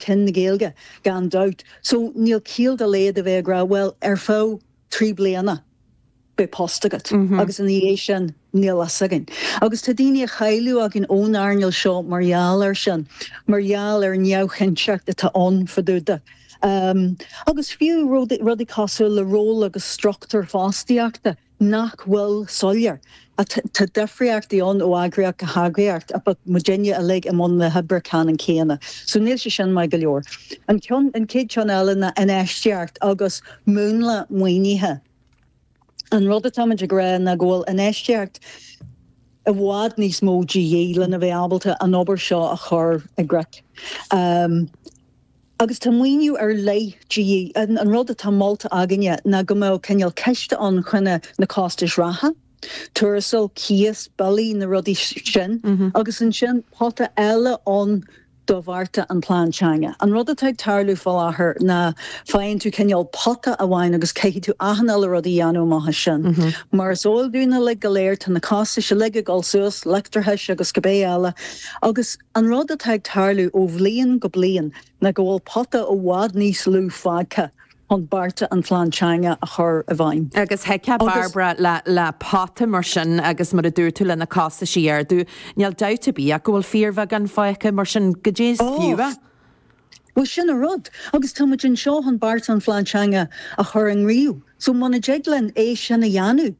cinn na Gaeilge, gan dabht. So, níl ciall dá laghad a bheith ag rá, bhuel, ar feadh trí bliana beidh post agat agus ina dhiaidh sin níl a fhios againn. Agus tá daoine a chailleadh againn ón earnáil seo mar gheall air sin, mar gheall ar an neamhchinnteacht atá ann fá dtaobh de. Agus fiú rudaí cosúil le ról agus struchtúr fostaíochta. nach bhfuil soiléir. Tá difríochtaí ann ó eagraíocht go heagraíocht ach tá muidinne uilig i mbun na hoibre ceannann céanna so níl sé sin maith go leor. An ceann, an chéad cheann eile ná infheistíocht agus múnla maoinithe. An rud atáimid ag rá ná go bhfuil infheistíocht i bhfad níos mó de dhíth lena bheith ábalta an obair seo a chur i gcrích. agus tá maoiniú ar leith de dhíth. An rud atá molta againne ná go mbeadh cineál ciste ann chun na costais reatha, tuarastail, cíos, billí, na rudaí sin, agus ansin pota eile ann do bhearta an Plean Teanga. An rud atá ag tarlú faoi láthair ná faigheann tú cineál pota amháin agus caithfidh tú achan uile rud a dhéanamh amach as sin. Mar is eol dúinn uilig go léir, tá na costais uilig ag dul suas, leictreachas agus cibé eile, agus. An rud atá ag tarlú ó bhliain go bliain ná go bhfuil pota i bhfad níos lú fágtha chun bearta an Phlean Teanga a chur i bhfeidhm. Agus thig, a Barbara, le pota mar sin agus mar a dúirt tú leis na costais i dtaobh ardú, níl dabht ar bith ach go bhfuil fíorbheagán fágtha mar sin i ndiaidh sin. Bhuel sin an rud. Agus tá muid anseo chun bearta an Phlean Teanga a chur i ngníomh so muna dtig linn é sin a dhéanamh,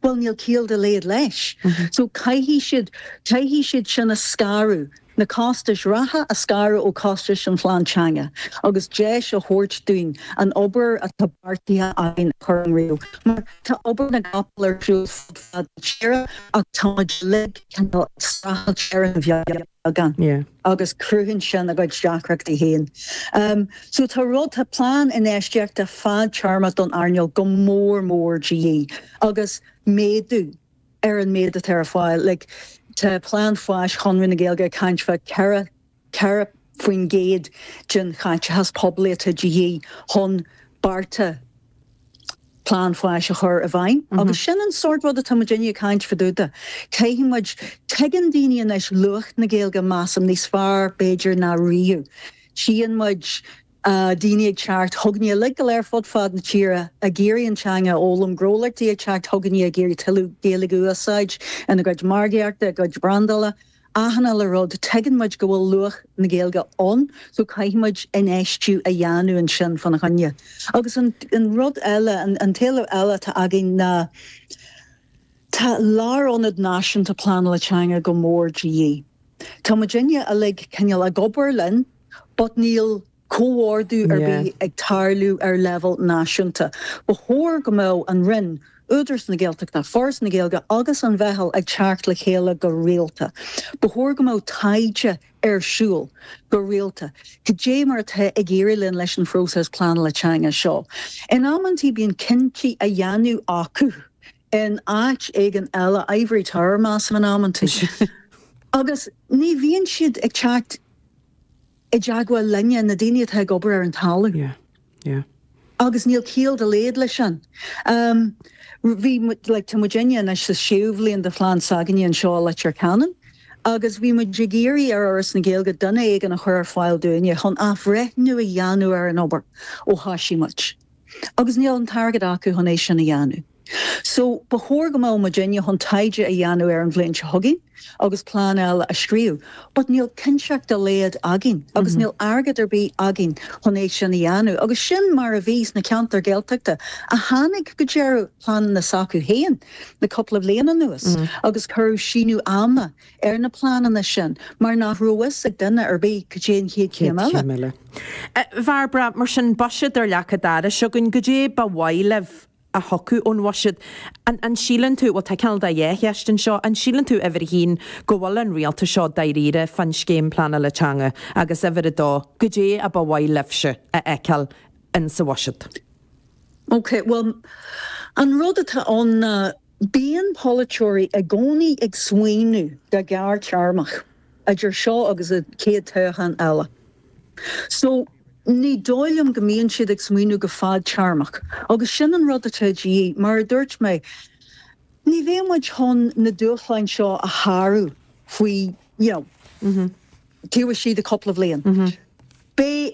bhuel níl ciall dá laghad leis so caithfidh siad, caithfidh siad sin a scaradh, na costais reatha a scaradh ó chostais an Phlean Teanga agus deis a thabhairt dúinn an obair atá beartaithe againn a chur i ngníomh mar tá obair na gcapall ar siúl fud fad na tíre ach táimid uilig cineál ag streachailt ar an againn agus cruthaíonn sin a gcuid deacrachtaí féin. So tá rud, tá plean infheistíochta fadtéarmach don earnáil go mór mór de dhíth agus méadú ar an méid atá ar fáil. Like tá plean fáis Chonradh na Gaeilge ag caint fá ceithre, ceithre faoin gcéad den chaiteachas poiblí atá de dhíth chun bearta, Plean Fáis a chur i bhfeidhm agus sin an sórt rud atá muid ag caint fá dtaobh de. Caithfidh muid, tuigeann daoine anois luach na Gaeilge, measaim, níos fearr b'fhéidir ná riamh. Tchíonn muid daoine ag teacht chugainne uilig go léir fud fad na tíre ag iarraidh an teanga a fhoghlaim, gnólachtaí ag teacht chugainne ag iarraidh tuilleadh Gaeilge a úsáid ina gcuid margaíochta, a gcuid brandála. aithne le rud, tuigeann muid go bhfuil luach na Gaeilge ann so caithfidh muid infheistiú a dhéanamh ansin fá na choinne. Agus an rud eile, an t-éileamh eile atá againn ná tá Lárionad Náisiúnta Pleanála Teanga go mór de dhíth. Tá muidinne uilig cineál ag obair linn but níl, comhordú ar bith ag tarlú ar leibhéal náisiúnta. Ba chóir go mbeadh an Roinn, Údarás na Gaeltachta, Foras na Gaeilge agus an Mheitheal ag teacht le chéile go rialta. Ba chóir go mbeadh taighde ar siúl go rialta. Cad é mar atá ag éirí linn leis an phróiseas pleanála teanga seo? In amantaí bíonn cinntí á dhéanamh acu in áit éigin eile, ivory tower measaim in amantaí, agus ní bhíonn siad ag teacht. i dteagmháil linne, na daoine atá ag obair ar an talamh. Yeah. Yeah. Agus níl ciall dá laghad leis sin. Um, bhí muid, like, tá muidinne anois sa séú bhliain de phlean s'againne anseo i Leitir Ceanainn agus bhí muid ag iarraidh ar Fhoras na Gaeilge duine éigin a chur ar fáil dúinne chun athbhreithniú a dhéanamh ar an obair ó thoisigh muid. Agus níl an t-airgead acu chun é sin a dhéanamh. So, ba chóir go mbeadh muidinne chun taighde a dhéanamh ar an bhliain seo chugainn agus plean eile a scríobh but níl cinnteacht dá laghad againn agus níl airgead ar bith againn chun é sin a dhéanamh agus sin mar a bhí sna ceantair Ghaeltachta a tháinig go deireadh pleananna s'acu féin le cúpla bhliain anuas agus cuireadh síneadh ama ar na pleananna sin mar nach raibh fhios ag duine ar bith cad é an chéad chéim eile. A Bhairbre, Mar sin, buiséad ar leac a' dorais againn, goidé ba mhaith libh? a thiocfadh ón bhuiséad. An síleann tú, bhuel tá cineál dhá cheist ansin, an síleann tú, uimhir a haon, go bhfuil an Rialtas seo dáiríre fán scéim pleanála teanga agus uimhir a dó, goidé ba mhaith libhse a fheiceáil in sa bhuiséad? Ok, bhuel an rud atá ann ná bíonn polaiteoirí i gcónaí ag smaoineamh go gearrthéarmach. idir seo agus an chéad toghchán eile so ní dóigh liom go mbíonn siad ag smaoineamh go fadtéarmach agus sin an rud atá de dhíth. Mar a dúirt mé, ní bheidh muid chun na dúshláin seo a shárú faoi, you know, taobh istigh de chúpla bhliain. Beidh.